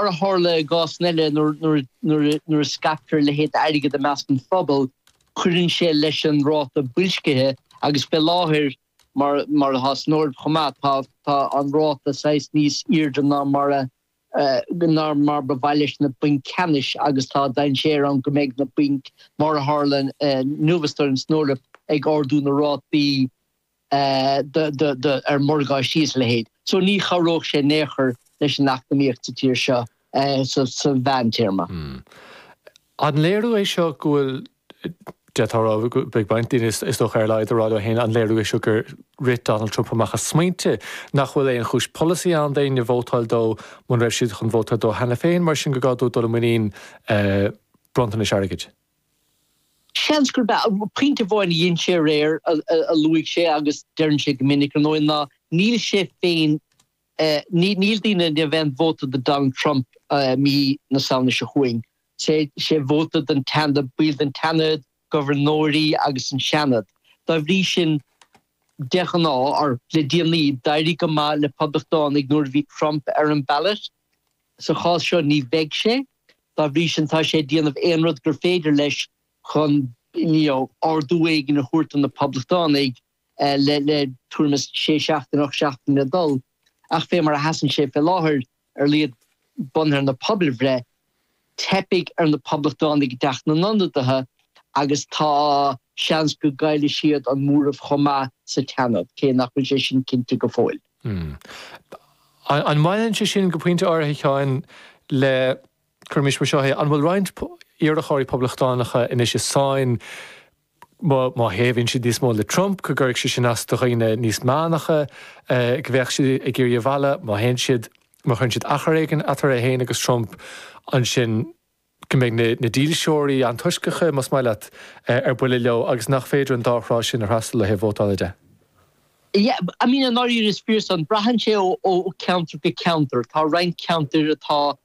Mar a tharla i gcásanna eile nuair a scaiptear a leithéid d'airgead i measc an phobail, cuireann sé leis an ráta boilscithe agus fé láthair, mar atá san Eoraip chomh maith, tá an ráta saghas níos aoirde ná mar a ná mar ba mhaith leis na bainc cheannais agus tá dainséar ann go mbeidh na bainc, mar a tharla inniu, is dóigh liom, san Eoraip, ag ardú na rátaí. ar mhorgáistí is a leithéid. So ní chabhródh sé in aon chor leis an eacnamaíocht sa tír seo sa mheántéarma. An léiriú é seo go bhfuil, d'fhéadfá a rá, beidh baint, daoine is dócha ar a laghad, ag rá leo féin, an léiriú é seo gur rith Donald Trump amach a smaointe, nach bhfuil aon chúis polasaí ann d'éinne vótáil dó muna raibh siad chun vótáil dó cheana féin, mar sin gur gá dó dul i muinín bronntanais airgid? Seans gurb ea. Pointe amháin a dhein sé aréir a luaigh sé agus deireann sé go minic, ar ndóigh, ná níl sé féin, níl daoine in ann, níl aon vóta do Donald Trump mí na Samhna seo chugainn, is é vóta don tseanad, baill den tseanad, gobharnóirí agus an seanad. Dá bhrí sin, de ghnáth, or le déanaí, d'éirigh go maith le Poblachtánaigh nuair a bhí Trump ar an ballot. Sa chás seo ní bheidh sé, dá bhrí sin tá sé ag déanamh aon rud gur féidir leis chun you know ardú éigin a thabhairt do na Poblachtánaigh le le tuairim is sé seachtaine, ocht seachtaine le dul. Ach fé mar a sheasann sé fé láthair ar laghad bunaithe ar na pobalbhreitheanna. Teipfidh ar na Poblachtánaigh i dTeach na nIonadaithe agus tá seans go gcaillfidh siad an móramh chomh maith sa tSeanad, cé nach bhfuil sé sin cinnte go fóill. An mbaineann sé sin, go pointe áirithe, a Sheáin, le, cuirimis mar seo é, an bhfuil roinnt iarrthóirí Poblachtánacha anois i sáinn má thaobhaíonn siad níos mó le Trump, go gcuirfidh sé sin as do dhaoine níos meánacha, go mbeadh siad ag iarraidh a mhealladh, má théann siad, má chuireann siad achar éigin eatarthu féin agus Trump, ansin go mbeidh na dílseoirí antoisceacha, más maith leat, ar buile leo agus nach féidir an dá thrá sin a fhreastal ó thaobh vótála de. Yeah, I mean, i ndáiríre is fíor san. Braitheann sé ó cheantar go ceantar. Tá roinnt ceantair atá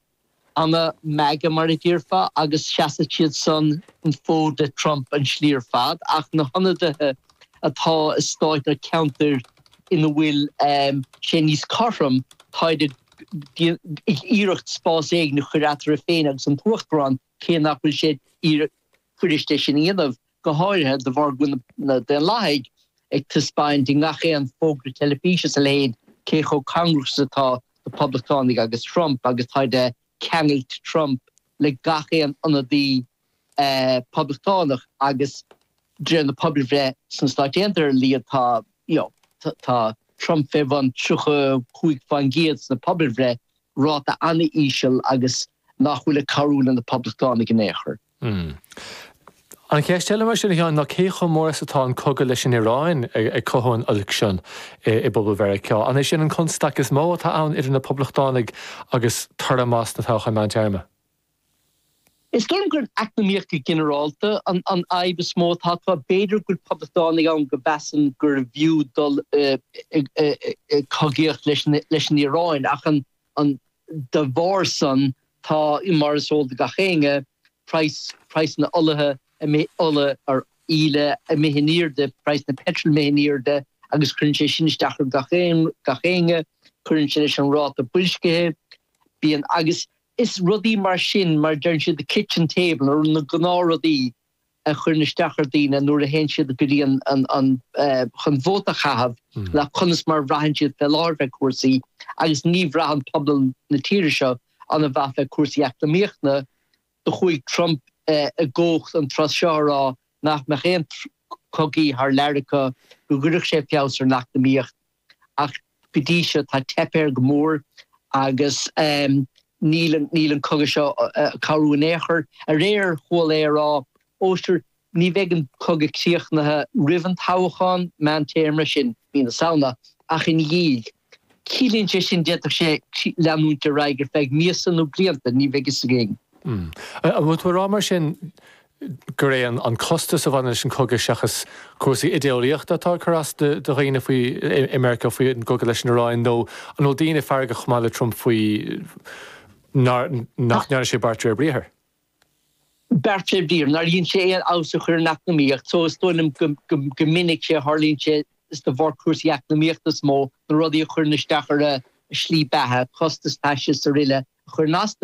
ana-MAGA mar a déarfá, agus seasfaidh siad san an fód le Trump an tslí ar fad, ach na hionadaithe atá i stáit nó ceantair ina bhfuil sé níos cothrom, táid ag iarraidh spás éigin a chur eatarthu féin agus an tUachtarán. cé nach bhfuil sé fíor-fhuirist é sin a dhéanamh, go háirithe de bharr go bhfuil na Daonlathaigh ag taispeáint i ngach aon fógra teilifíse is a leithéid cé chomh cóngarach is atá na Poblachtánaigh agus Trump agus táid ag ceangailt Trump le gach aon ionadaí Poblachtánach agus de réir na pobalbhreith sna Stáit Aontaithe ar a laghad tá, you know, tá Trump fé bhun 35% sna pobalbhreithe, ráta an-íseal agus nach bhfuil ag cabhrú le na Poblachtánaigh in aon chor. Mh. An cheist eile mar sin, a Sheáin, ná cé chomh mór is atá an cogadh leis an Iaráin ag cothú an oilc sin i bpobal Mheiriceá? An é sin an constaic is mó atá ann idir na Poblachtánaigh agus toradh maith sna toghcháin meántéarma? Is dóigh liom gurb í an eacnamaíocht go ginearálta an fhadhb is mó atá acu. B'fhéidir go bhfuil Poblachtánaigh ann go measann gurbh fhiú dul i gcogaíocht leis an Iaráin ach an De bharr san, tá, mar is eol do gach éinne, praghas, praghas na holaí, ola, ar íle, imithe in airde, praghas na peitril imithe in airde, agus cuireann sé sin isteach ar gach éinne, gach éinne, cuireann sé leis an ráta boilscithe, bíonn, agus is rudaí mar sin, mar deireann siad, the kitchen table, na gnáthrudaí, a chuireann isteach ar dhaoine nuair a théann siad go dtí an chun vóta a chaitheamh ná conas mar a bhraitheann siad fé láthair fé chúrsaí agus ní bhraitheann pobal na tíre seo ana mhaith fé chúrsaí eacnamaíochta do chuaigh Trump i gcumhacht an tráth seo ag rá nach mbeadh aon cogaí thar lear acu go gcuirfeadh sé feabhas ar an eacnamaíocht ach go dtí seo tá teipthe air go mór agus níl an cogadh seo ag cabhrú in aon chor. Aréir chuala é ag rá, 'Ó sure, ní bheidh an cogadh críochnaithe roimh an toghchán meántéarma, sin mí na Samhna, ach ina dhiaidh. Ciallaíonn sé sin d'fhéadfadh sé leanúint ar aghaidh ar feadh míosa nó blianta, ní bheidh fhios againn. An bhfuil tú ag rá mar sin gur é an costas a bhaineann leis an gcogadh seachas cúrsaí idéolaíochta atá ag cur as do dhaoine faoi i Meiriceá faoi an gcogadh leis an Iaráin, nó an bhfuil daoine feargach chomh maith le Trump faoi nach ndearna sé beart de réir briathair? Beart de réir briathair, nár dhein sé aon fheabhas a chur ar an eacnamaíocht, so is dóigh liom go minic a tharlaíonn sé is de bharr cúrsaí eacnamaíochta is mó, na rudaí a chuireann isteach ar a slí beatha, costas taistil is araile, a chuireann as do.